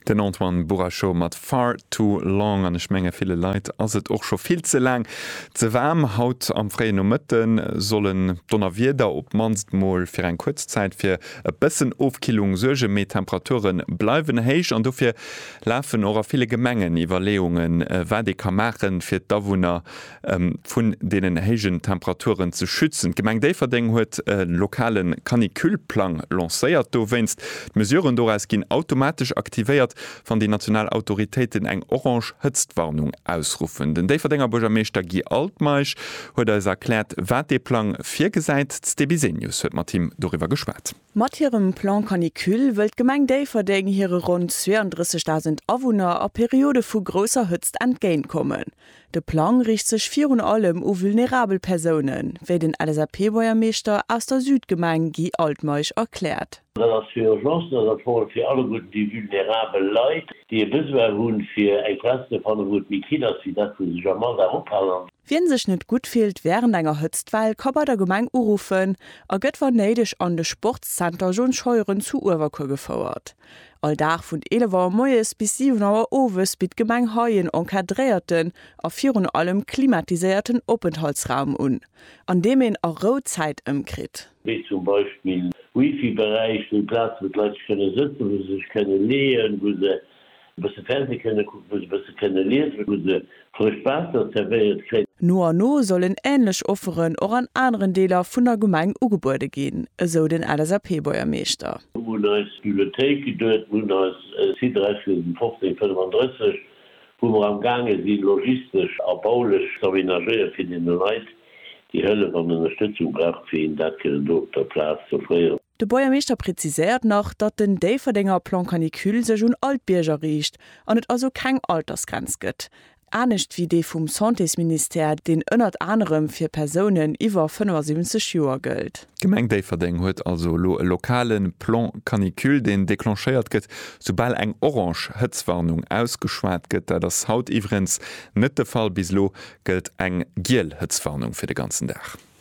Den Antoine Bourachot mat Far Too Long. An ech menge ville Leit ass et och scho vill ze laang ze waarm. Haut am fréien Nomëtte sollen d'Donnerwieder op d'mannst mol fir eng kuerz Zäit fir e bëssen Ofkillung suergen, mee d'Temperature bleiwen héich. An dofir lafen och a ville Gemengen Iwwerleeungen, wat ee ka maachen, fir d'Awunner vun deenen héijen Temperaturen ze schützen. D'Gemeng Déifferdeng huet e lokale Canicule-Plang lancéiert dowéinst. D'Mesuren doraus ginn automatesch aktivéiert, wann déi national Autoritéiten eng orange Hëtztwarnung ausruffen. Den Déifferdenger Buergermeeschter Guy Altmeisch huet eis erkläert, wat dee Plang virgesäit. D'Sté Bisenius huet mat him doriwwer geschwat. Mat hirem Plan Canicule wëll d'Gemeng Déifferdeng hire ronn 32.000 Awunner a Periode vu grousser Hëtzt entgéint kommen. De Plang riicht sech virun allem u vulnerabel Persounen, wéi den LSAP-Boiermeeschter aus der Südgemeng Guy Altmeisch erkläert. Dat ass fir Urgencen, dat ass vor allem fir alleguerten déi vulnerabel Leit, déi e Besoin hu fir eng Plaz ze fannen, wou et méi kill ass wéi dat wou se sech am Alldag ophalen. Wien sech net gutt fillt während enger Hëtztwell ka bei der Gemeng uruffen a gëtt wann néideg an de Sportszenter John Scheuren zu Uewerkuer gefouert. All Dag vun 11 Auer moies bis 7 Auer owes bitt d'Gemeng hei en encadréierten a virun allem klimatiséierten Openthaltsraum un, an deem een a Rou Zäit ëmkritt. Wéi zum Beispill Wifi-Beräich, wou Plazen, wou d'Leit sech kënne sëtzen, wou se sech kënne leeën, wou se e bësse Fernseh kënne kucken, wou se e bësse kënne liesen, wou se frëscht Waasser zerwéiert kréien. No a no sollen änlech Offeren och an aneren Deeler vun der Gemeng ugebuede ginn, esou den LSAP-Buergermeeschter. Mir hunn eis Bibliothéik geduet, mir hunn eis Site Dräispisen 15, 35, wou mer am gaange si logistesch a baulech z'aménagéiere fir deene Leit, déi Hëllef an Ënnerstëtzung brauchen, fir hinnen dat kënnen do op der Plaz z'offréieren. De Buergermeeschter präziséiert nach, datt den Déifferdenger Plan Canicule sech un all d'Bierger riicht an et also keng Altersgrenz gëtt, anescht wéi dee vum Santésministère, deen ënnert anerem fir Persounen iwwer 75 Joer gëllt. D'Gemeng Déifferdeng huet also elo e lokale Plan Canicule, deen declenchéiert gëtt, soubal eng orange Hëtzwarnung ausgeschwat gëtt. Dat ass haut iwwerens net de Fall. Bis elo gëllt eng giel Hëtzwarnung fir de ganzen Dag.